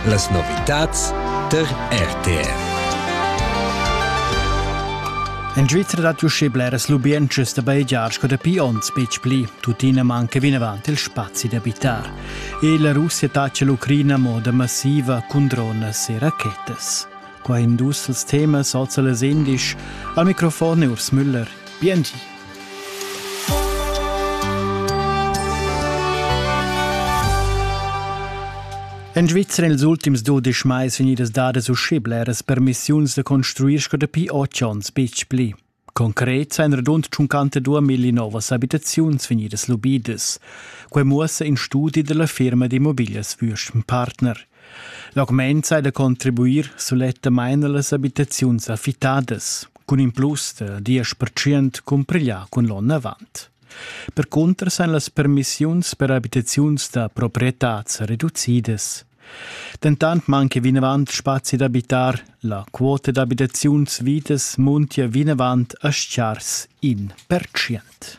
Las novitads der RTR. En Svizra dat uschè bleras lubientschas da bajegiar sco dapi onns betg pli, tuttina manca vinavant il spazi d'abitar. E la Russia tace l'Ucraina moda massiva cun drones e rachetas. Qua in dus als temas, also les indisch, al microfon Urs Müller. Bienvenue. En Svizra ils ultims dudisch mais vegnidas dadas uschè bleras permissiuns da construir sco dapi otg onns betg pli. Concret ein radund 52 milli novas abitaziuns vegnidas lubidas. Quei muossa in studi dalla firma d'immobilias Würschenpartner. L'augment sai da contribuir sulettamain a las abitaziuns affittadas, cun in plus da diesch pertschient cumpiglià cun l'onn avant. Percunter san las permissiuns per abitaziuns da proprietad reducidas. Dentant manca vinavant spazi d'abitar, la quota d'abitaziuns vidas muntia vinavant a schars in pertschient.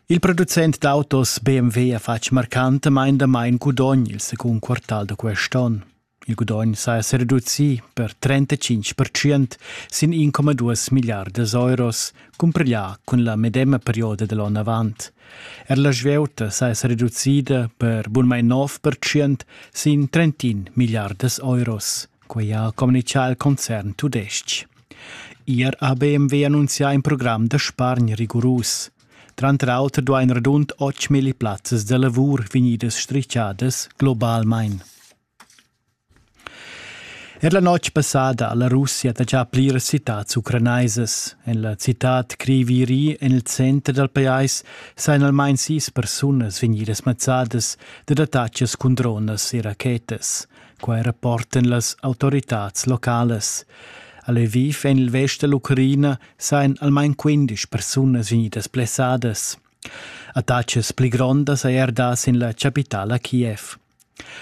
Il producent d'autos BMW ha fatg marcantamain damain gudogn il secund quartal da quest onn. Il gudogn saja sa reducì per 35% sin 1,2 milliardas euros, cumpiglià cun la medema perioda da l'onn avant. Er la svieuta saja sa reducida per bunmain 9% sin 31 milliardas euros. Quei ha communitgà il concern tudestg. Ier ha BMW annunzià in program da spargn rigurus. Tranter auter duain radund 8.000 plazzas da lavur vegnidas strischadas globalmain. Er la notg passada ha la Russia taxà pliras citads ucranaisas. En la citad Kriviri, en il center dal pajais, sajan almain sis persunas vegnidas mazzadas dad attacks cun dronas e rachetas. Quai rapportan las autoritads localas. A Lviv en il vest da l'Ucraina sajan almain quindesch persunas vegnidas blessadas. Attacas pli grondas hai er dà sin la chapitala Kiev.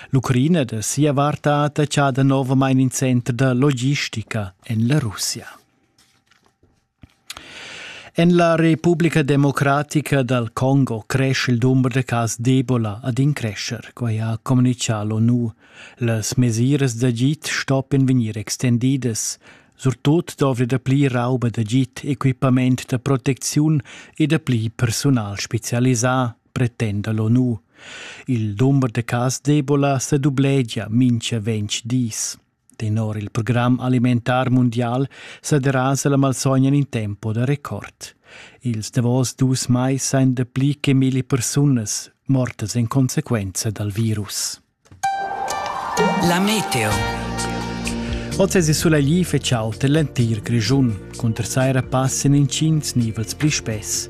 L'Ucraina da sia vart ha attachà danovamain in center da logistica en la Russia. En la Republica democratica dal Congo cresce il dumber da cas d'Ebola ad in crescher, quai ha communitgà l'ONU. Las mesiras d'agid stoppien vegnir extendidas. Surtut dovri da pli rauba d'agid, equipament da protecziun e da pli personal spezialisà, pretenda l'ONU. Il dumber da cas d'Ebola sa dublegia mincha ventg dis. Tenor il program alimentar mundial sa derasa la malsogna in in tempo da record. Ils davos dus mais ein dapli che milli persunas mortas en consequenza dal virus. La meteo. Oz è sulegli fetg aut en l'entir Grischun, cunter saira passen intgins nivels pli spess.